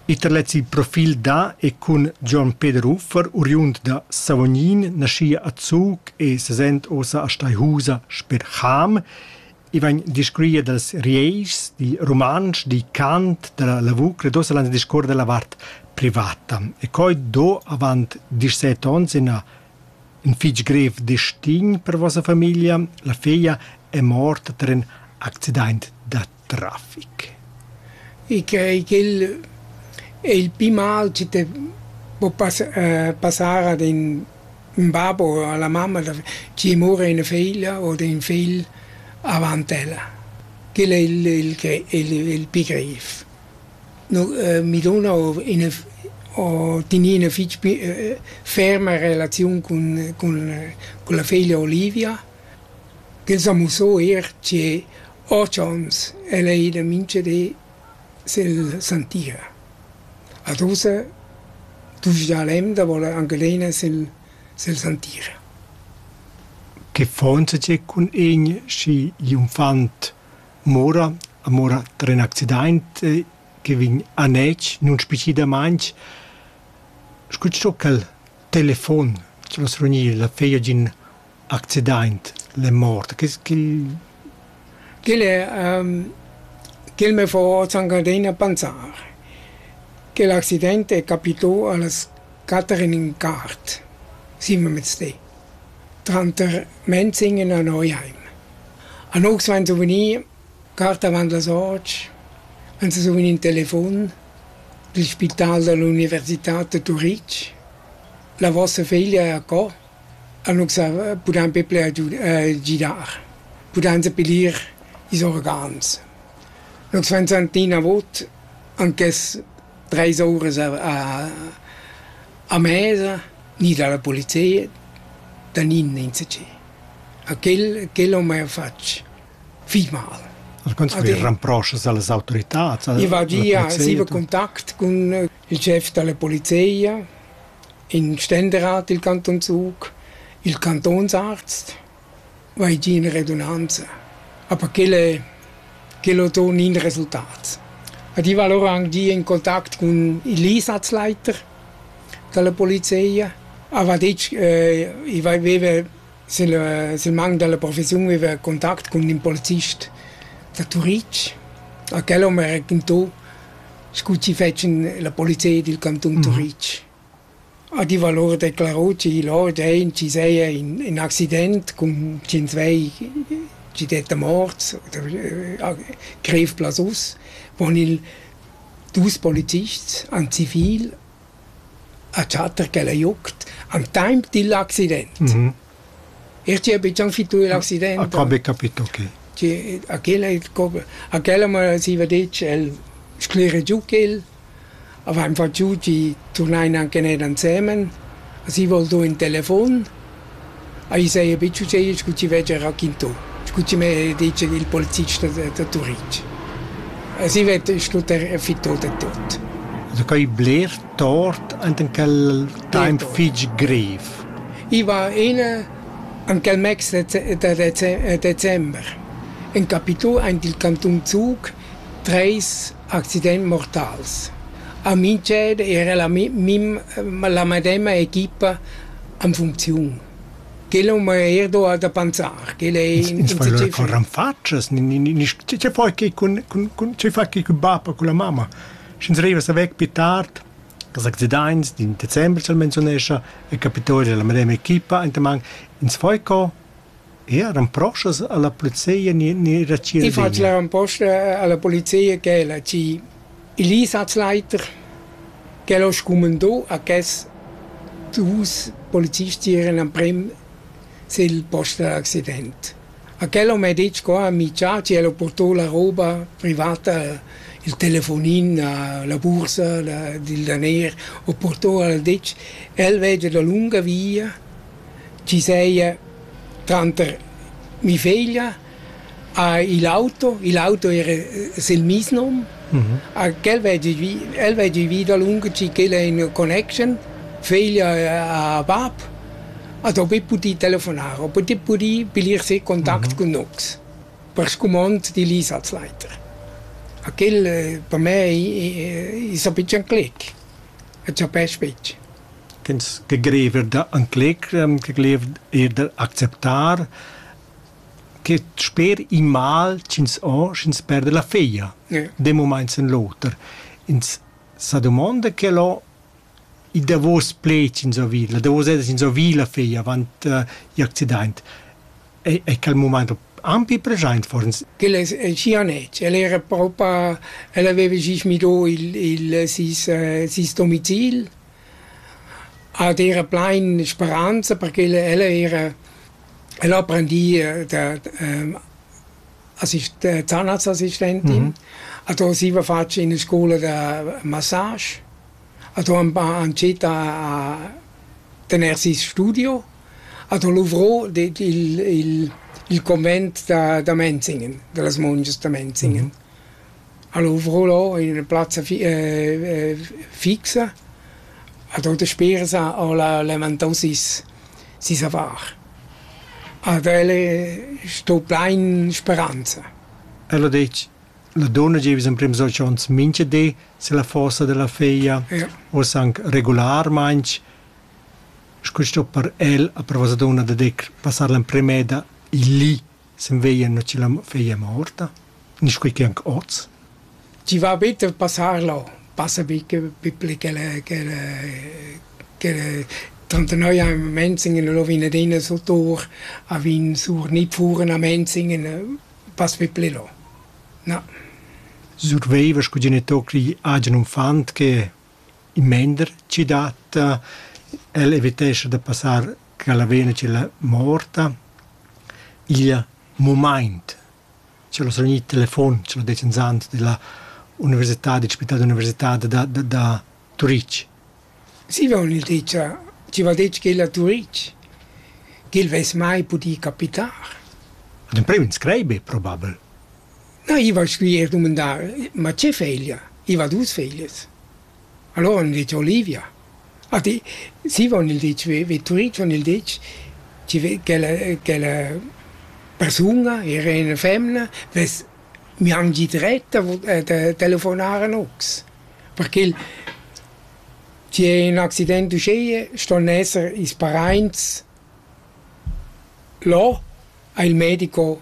Iter lez il profil da e cun Gion Peder Uffer, uriund da Savognin, naschia a Zug e sesent ossa a Steihusa sper Cham. I vegn discurria dals Rieischs, di rumantsch, di cant, dalla lavur credosa l'ans discuor dalla vart privata. E coi do avant disset onns ina in fich grev destin per vossa famiglia. La feglia è morta ter ün accidaint da trafic. E che quel è il pli mal che te può pas- passar ad ün ün bab o a la mamma da chi mura üna figlia o d'ün figl avant ella. Quel è il il gre- il il pli grev. No mi duna o üna o teni üna fich pi ferma relaziun cun cun la figlia Olivia, ch'el sa musso eir che Ho chauns, el ei ida mincha di silla santia. Ad ussa duvrgia l'emna da voler anc adina sül sülla santia. Che faunsa tgei cun egn schi gl'unfant mora, mora tra ün accidaint che vegn anetg nunspecidamaing, scu ch'el telefon, ch'el as reugnir la feia giün accidaint l'è mort. Che quel Quel è ehm quel m'è fo zangadin a panzar. Quel accident è capitô a las quatter e ün quart, simmelmezdi, tranter Menzing e na Neuheim. Anox vain zu vegnir cart avant las otg, vain zu vegnir ün telefon dil spital da l'università da Turitg. La vossa figlia è a co? Annunz pudain be bler gidar, pudain sepilir ils organs. Nus vainsan tina vot anches treis ouras a a mesa, gnir da la polizia, da nin insacchi. A quel quel ho mia fatg fich mal. Al contrari, ramproschas a las autoritats? I va gia, siva contact cun il schef dalla polizia, in Ständerat dil Canton Zug, il Cantonsarzt, va ei giu ina redunanza. Aber quel è, quel ho ton in resultat. Ed io val ora anche in contact con il Einsatzleiter dalla polizia, aber detg, äh, ich aveva Sül sül mang da la professiun vaiva contact cun ün polizist da Turitg. A quel hom raquintò scu chi fetschan la polizia dil cantun Turitg. A diva lur declarò chi lò dvain chi seja in in accident cun tschient vei chi detta morts oder grev plazus. Pon ils dus polizists, ün zivil a Chater ch'el ei uckt al temps digl accident. E tgi ha buca fitui l'accident? Ha qua be capito che. Tgi a quel ei a quella me siva detg el sclera giu quel, avein fatg giu tgi turnein anche ned ansemen, a si vol do in telefon. Ai saja betg uschè scu chi veggia raquintà, scu chi m'ha dit il polizist da da Turitg. As i vetta schlüter fittà da tuot. Sacai bler tort ant in quel taimp fich grev. I va ina ant quel meis dece- da dece- december in capitu aint il cantun Zug Treis accidents mortals. A mintgin era la mi- mim- la medema equipa en funcziun. Quel ho mei eir do da pensar. Quel ei in iniciativa. Con ranfatschas, ni, ni, ni, che, che fai che cun, cun, cun, che fai che cun bab o cun la mamma? Sch'ins rivas a vec pli tard, dals accidents d'in december, se menzonescha, è capitau era la medema equipa, enta man, ins fai co, Eran proxas alla polizia ni, ni era Cirvegna? Ich fahre am Post alla Polizia gell ci il Einsatzleiter gell ist kommen da a ges die Haus Polizistieren am Prem sil post d'accident. A quello m'è detto qua a Miciaci e l'ho portò la roba privata, il telefonin, la bursa, il daner, ho portò al detg, el veggia da lunga via chi seia tranter mi feglia ha il auto, il auto era sel meis nom, a quel veggi vi, el veggi vi dalunga chi ch'el è in connection, feglia ha bab, ad ho be pudì telefonar, ho pudì pudì pilir se contact cun nox, per scumond d'il ir als leiter. A quel per me i i s'ha be chanclec, a chapesc betg. Tins che greiver da encletg, che greiver eir da acceptar, che sper in mal ch'ins ho, sch'ins perda la feglia d'ün mumaint sen l'oter. Ins sa dumonda quel ho il davos pled ch'ins ho vid, la davos esa ch'ins ho vid la feglia avant i accidaint. È, è quel mument ampi present for ins? Quel è el cianec, el era propa, el aveva sis midò il, il sis, sis domicil, ed era plain speranza perché el, el era, el apprendì da, da, assist, zahnarztassistentin, mm -hmm. e da siva fatg in scola da massage, e da han citat a tener sis studio, Ad ho luvrò ded il il il comment da da Menzingen, da las mungias da Menzingen. Al luvrò lò in üna plazza fi fixa, ad ho daspera sà ho la levantò sis sis avar. Ad el sto plain speranza. El ha detg, la donna gieva emprims dolç ons mincha di, se la fossa della figlia, Ja. uoss anc regularmaing. Sco sto per el a prova dunna da decr passar l'emprema eda il li sen veglia na chi la feglia è morta, nisch quei che anc oz. Chi va bitte passar là, passa bi che pipli che le che le che le tantenoi a Menzingen lo vin ad ina sul tur, a vin sur nit furen a Menzingen, pass pipli là. Na. Surveiva sco genitocri agen unfant che In mender chi dat el evitescha da passar cha la vena tg'el è morta. Il mumaint ch'el ho survegnì il telefon, ch'el ho det inzant della università, del spital d'università da da da Turich. Zieva ho gnü dit cha chi va dit ch'el a Turich, ch'el vess mai pudì capitar. Ed in prüm inscrai be probabel. Na, i va scri eir dumandar, ma che feglia? I va dus feglias. Allora han dit Olivia. A di, si von il ditg Vetturitsch, von il ditg chi ve- ch'ella ch'ella persun-a era üna femna, vess miangit retta da telefonar a nocs. Perché il chi è ün accident uschea ston esser ils paraints là a il medico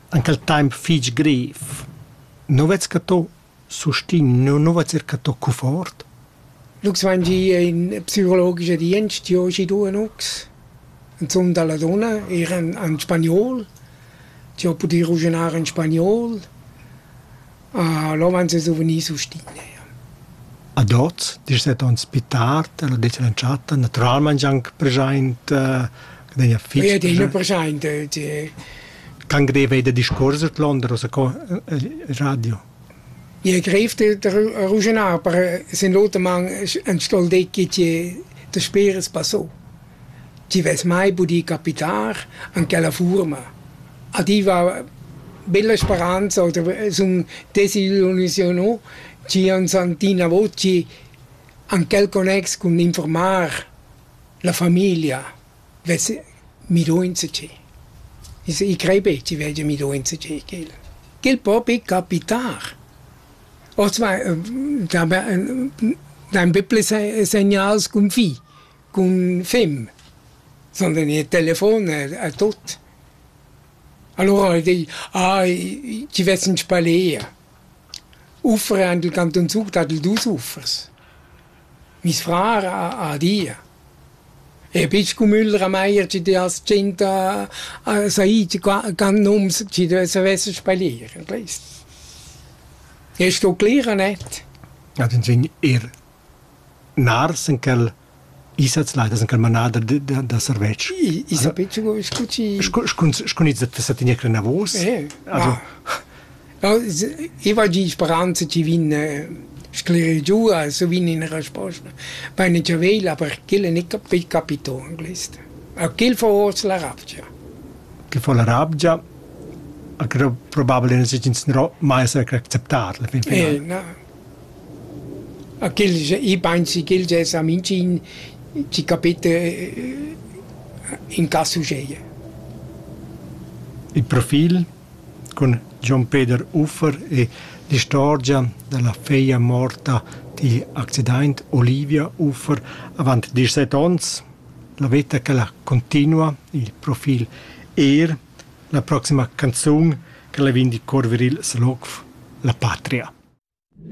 Aunc el temps fich grev. Nu vez cattà sustin, nu, nu vez eir cattà cuffort. Lux vain gi in psicologica dienst jo schidu a Lux. Insum da la dunna, eir an, an spagnol. Ti ho pudü ruginar in spagnol. Là van se suvenir sul stile, ja. Ad hoz, dschet ons pü tard, ella det l'entschatta natüralmaing anc preschaint, che degna fich Oi adina preschaint, Can greva eir da discuors dad Londra, co radio. Ie grev da ruschenar, aber sin l'oter man entsto'l decit che daspera es passà. Ti vess mai pudì capitar en quella furma. A ti va bella speranza oder sun desillusiunà chi ans han tina voci en quel connex cun informar la famiglia vess midunza chi. I crei be chi veggia midunza chi ch'el. Ch'el po be capitar. Oz va da dain be ples segnals cun fi. Cun fimm sonden i telefon a tutt. Alura di: «Ai, chi vess ün spalea?» Uffre han tut ün zuch dad dus uffers. Miss frar ha ha dia: «E bist Cumüll Rameyer chi ti hast tschient a a said can nums chi ti savesses spalier?» E sto cler e net. Ad ün vegn eir Nars en quel i sez laitas en quel manader da, da, da servetsch. I, i sa betg co scu ci... Scu, scu, scu ins dat sa tener clenavos. Eh, also... Ja. I va di speranza ci vin sclere giù, so vin in risposta. Bene ci vela perché le ne capi capito anglese. A che fa ors la rabgia? Che fa la rabgia? Acro probabile ne si ins no mai sa acceptar la fin fine. Eh, no. A ch'el i pensi ch'el dessa minchin chi capita in cas uscheia. Il profil cun Jon Peder Uffer e l'istorgia dalla feglia morta digl accidaint Olivia Uffer avant dieschset ons. La veta ch'ella cuntinua, il profil Er, la proxima canzun ch'ella vegn dir corveril saloc La patria.